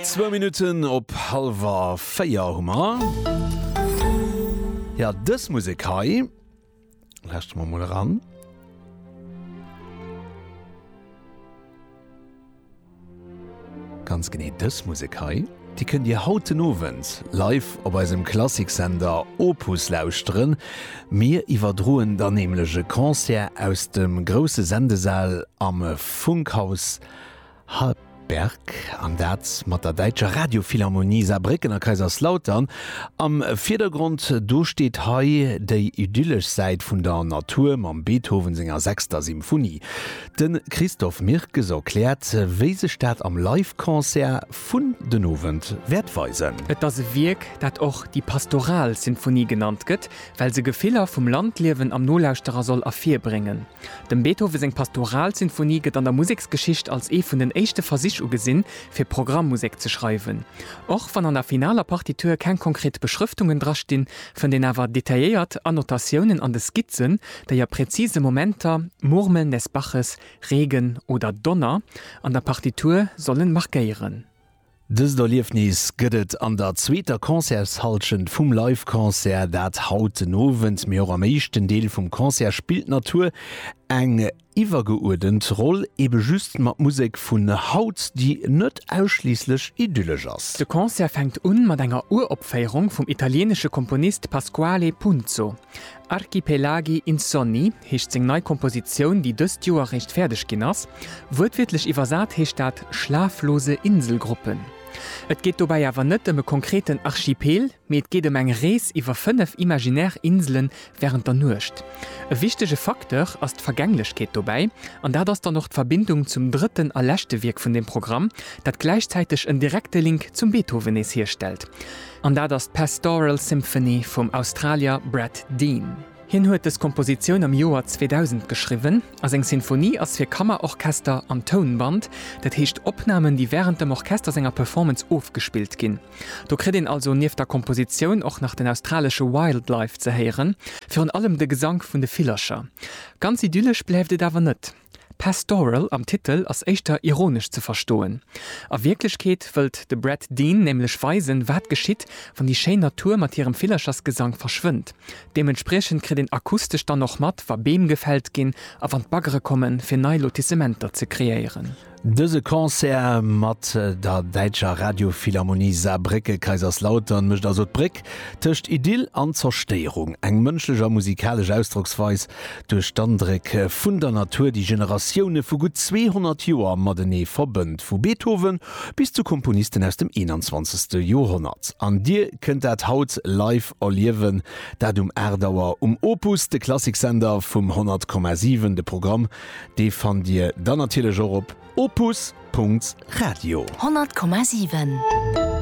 Zwou Minutten op hallwer véier hu mer. Jo, dës Musek hei lauschteren mer emol eran. Ganz genee dës Musek hei. Déi kënnt Dir haut den Owend live op eisem Klassiksender Opus lauschteren. Mir iwwerdroen dann nämlech e Concert aus dem grousse Sendesal am Funkhaus. Hartberg, an dat mat der däitscher Radiophilharmonie Saarbrécken a Kaiserslautern am Virdergrond. Do steet hei déi idyllesch Säit vun der Natur mam Beethoven senger sechster Symphonie. De Christophe Mirkes erkläert, wéi sech dat am Live-Concert vun den Owend wäert weisen. Et ass e Wierk, dat och déi pastoral Sinfonie genannt gëtt, well se Gefiller vum Landliewen am Nolauschterer soll ervirbréngen. Dem Beethoven seng Pastoralsinfonie gëtt an der Museksgeschicht als ee vun den éischte Versich ugesinn, fir Programmmusek ze schreiwen. Och wann an der finaler Partitur keng konkret Beschrëftungen drastinn, fënnt een awer detailléiert Annotatiounen an de Skizzen, déi a präzise Momenter, Murmeln des Baches, Regen oder Donner, an der Partitur sollen markéieren. Dëst Erliefnis gëtt et an der zweeter Concertshallschent vum Live Concert, dat haut den Owend, mee och am éischten Deel vum Concert spillt d'Natur eng iwwergeuerdent Roll, ebe just mat Musek vun haut, déi net ausschliisslech idyllesch ass. De Concert fänkt un mat enger Uropféierung vum italieenesche Komponist Pasquale Punzo. Archipelagi insonni heescht seng nei Kompositioun, déi dëst Joer eréischt fäerdeg ginn ass. Wuertwiertlech iwwersat heescht dat schlaflose Inselgruppen. Et geet dobäi awer net ëm e konkreten Archipel, mee et geet ëm eng Rees iwwer fënnef imaginär Insele wärend der Nuecht. E wichtege Facteur ass d'Vergänglechkeet dobäi, an dat ass dann och d'Verbindung zum drëtten a leschte Wierk vun dem Programm, dat gläichzäiteg en direkte Link zum Beethoven nees hierstellt. An dat ass d'Pastoral Symphony vum Australier Brad Dean. Hien huet dës Kompositioun am Joer 2000 geschriwwen a seng Sinfonie ass fir Kammerorchester an Tounband, dat heescht Opnamen, déi wärend dem Orchester senger Performance ofgespillt ginn. Do kritt een also nieft der Kompositioun och nach den australesche Wildlife ze héieren, virun allem de Gesank vun de Villercher. Ganz idyllesch bleift et awer net. Pastoral am Titel ass éischter ironesch ze verstoen. A Wierklechkeet wëllt de Brad Dean nämlech weisen, wat geschitt, wann déi schéin Natur mat hirem Villerchersgesang verschwënnt. Deementspriechend kritt een akustesch dann och mat, wa Beem gefällt ginn a wann d'Baggere kommen, fir nei Lotissementer ze kreéieren. Dëse Concert mat der däitscher Radiophilharmonie Saarbrécke-Kaiserslautern mécht also d'Bréck tëscht Idyll an Zerstéierung, eng mënschlech a musikalesch Ausdrocksweis duerch d'Andréck vun der Natur, déi Generatioune vu gutt 200 Joer matenee verbënnt, vu Beethoven bis zu Komponisten aus dem 21. Joerhonnert. An Dir kënnt dat haut live erliewen, dat um 8 Auer um Opus, de Klassiksender vum 100,7. De Programm Dee fannt Dir dann natierlech och op opus. Radio. 100,7.